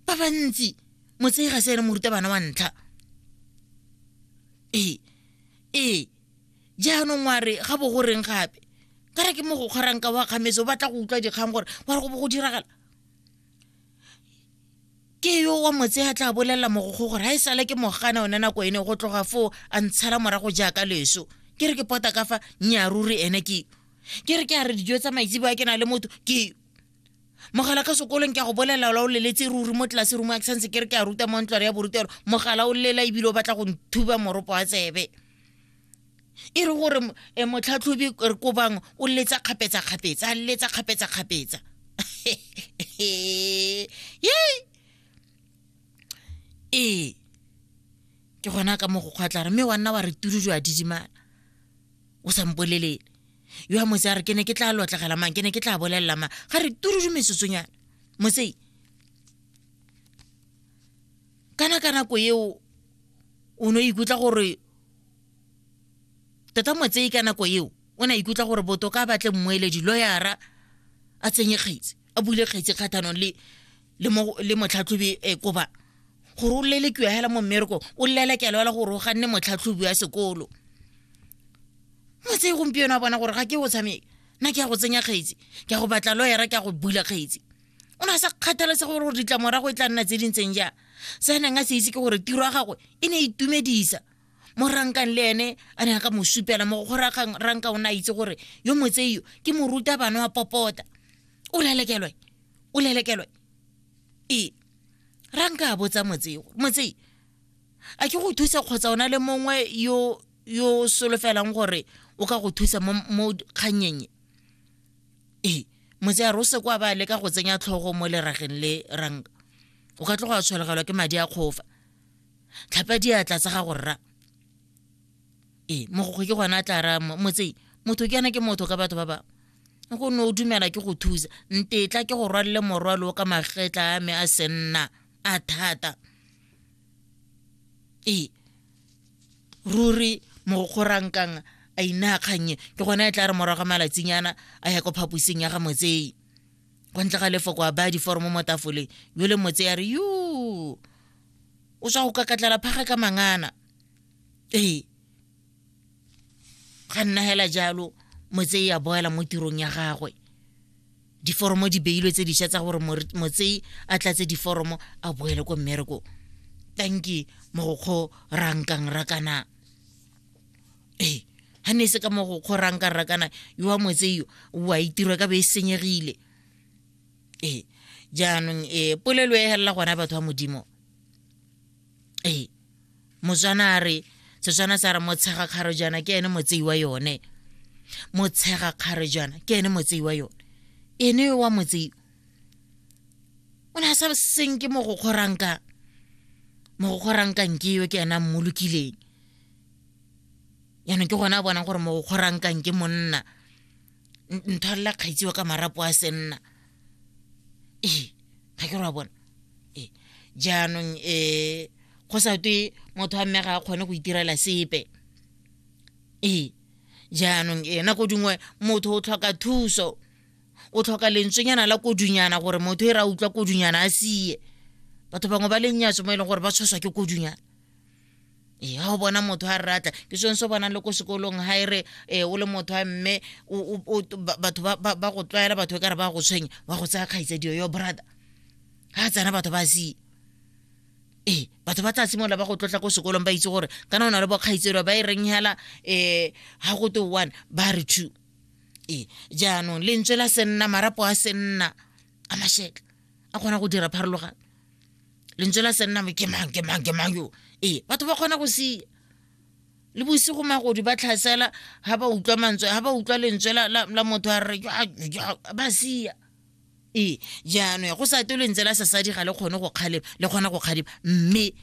ba bantsi motsei ga se ene morutabana wa ntlha ee ee jaanong wa re ga bo go reng gape ka re ke mo go kgorang ka wa kgametse o batla go utlwa dikgang gore wa re go bo go diragala ke yo wa motse a tla bolelela mogogo gore ga e sale ke mogana one nako ene go tloga foo a ntshela morago jaaka leso ke re ke pota ka fa nyaaruri ene ke ke re ke a re dijo tsa maitsebo a ke na le motho ke mogala ka sekolong ke a go bolelela ola o leletse ruri mo tlelase rumo a ke santse ke re ke a ruta mo ntlware ya borutelo mogala o lela ebile o batla go nthuba moropo wa tsebe e re gore e, motlhatlhobi re kobang o letsa kgapetsa-kgapetsa a letsa kgapetsa-kgapetsa ee ke gona ka mo go kgwatlare mme wa nna wa re turu jo a didimala o sa mpolelele yo a mose a re ke ne ke tla lotlegela mang ke ne ke tla bolelela mang ga re turudu mesosonyana mosei kana ka nako eo o ne o ikutlwa gore tota motsei ka nako eo o ne a ikutlwa gore botoka a batle mmueledi loyara a tsenye kgetsi a bule kgetsi kgathanong le le mo le motlhatlhobi e koba gore o lele kiwa hela mo mmereko o llela kelo la gore o ganne motlhatlhobi wa sekolo motse gompieno a bona gore ga ke o tshameke nna ke ya go tsenya kgetsi ke ya go batla loyera ke ya go bula kgetsi o ne a sa kgathaletse gore gore ditlamorago e tla nna tse dintseng jang se a neng a se itse ke gore tiro ya gagwe e ne e itumedisa mo rankang le ene a ne a ka mo supela mo go ranka o ne a itse gore yo motseio ke moruta bana wa popota o lelekelwe o lelekelwe ee ranka a botsa motsei gore motsei a ke go thusa kgotsa ona le mongwe yo yo solofelang gore o ka go thusa mo mo kganyeng ee motsei a re o se kwa ba leka go tsenya tlhogo mo lerageng le ranka o ka tloga a tshwelegelwa ke madi a kgofa tlhapa diatla tsa gago rra ee mogokgo ke gona a tla raya motsei motho ke yana ke motho ka batho ba bangwe go ne o dumela ke go thusa ntetla ke go rwalele morwalo o ka magetla a me a senna a thata ee ruri mogokgorankang a inaya kgannye ke gone e tla re morago malatsinyana a ya ko phaposing ya ga motsei go ntle ga lefoko a baya diforomo mo tafoleng yo le motse ya re yo o tswa go kakatlela phaga ka mangana ee ga nna hela jalo motsei a boela mo tirong ya gagwe diforomo di beilwe tse dišwa tsa gore motsei a tlatse diforomo a boele ko mmereko tanki mogokgo rankang rakana ee ga ne e se ka mogokgo rankang rakana yo wa motseio o a itirwa ka be e senyegile ee jaanong e polelo e helela gona batho ba modimo ee motswana a re setswana sa re motshega kgaro jaana ke ene motsei wa yone motshega kgaro jaana ke ene motsei wa yone ene yo wa motsei o ne a sa seng ke mo go kgoranka mo go kgoranka nke yo ke ena mmolokileng jaanong ke gone a bonang gore mo go kgoranka nke monna nthalela kgaitsiwa ka marapo a senna ee ga ke ra bona ee jaanong um go sa twe motho wa mme ga a kgone go itirela sepe ee jaanong e nako dingwe motho o tlhoka thuso o tlhoka lentswenyana la kodunyana gore motho e re a utlwa kodunyana a sie batho bangwe ba lennyatso mo e leng gore ba tshoswa ke kodunyana ee ga o bona motho a ratla ke sone se bonang le ko sekolong ga e re ee o le motho a mme batho ba go tlwaela batho e ka re ba go tshwenya wa go tsaya kgaitsadiyo yo brother ga tsena batho ba sie ee batho ba tla simolola ba go tlotla ko sekolong ba itse gore kana o na le bokgaitselo ba e reng hela um ga go te one ba re two ee jaanong lentswe la senna marapo a senna a masheka a kgona go dira pharologano lentswe la senna mo ke mang ke mang ke mang yo ee batho ba kgona go sia le bosigo magodi ba tlhasela ga ba utlwa mantswe ga ba utlwa lentswe la motho a re ba sia ee jaanong ya go sa te lentswe la sasadi ga le kgone go kgalema le kgona go kgalema mme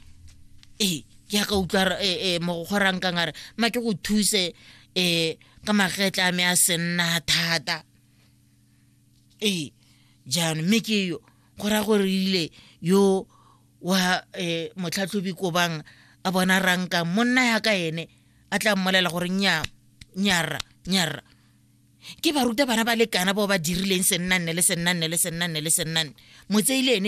ee ke ya ka utlwa e, e, mogogorang kang a re ma ke go thuse um ka magetla a me a senna thata ee jaanong mme ke yo go raya gore ile yo wa um motlhatlhobi kobang a bona rankang monna ya ka ene a tla mmolela gore nya nyarra nyarra ke baruta bana ba lekana bao ba dirileng sennanne le sennanne le sennanne le sennanne motseile ene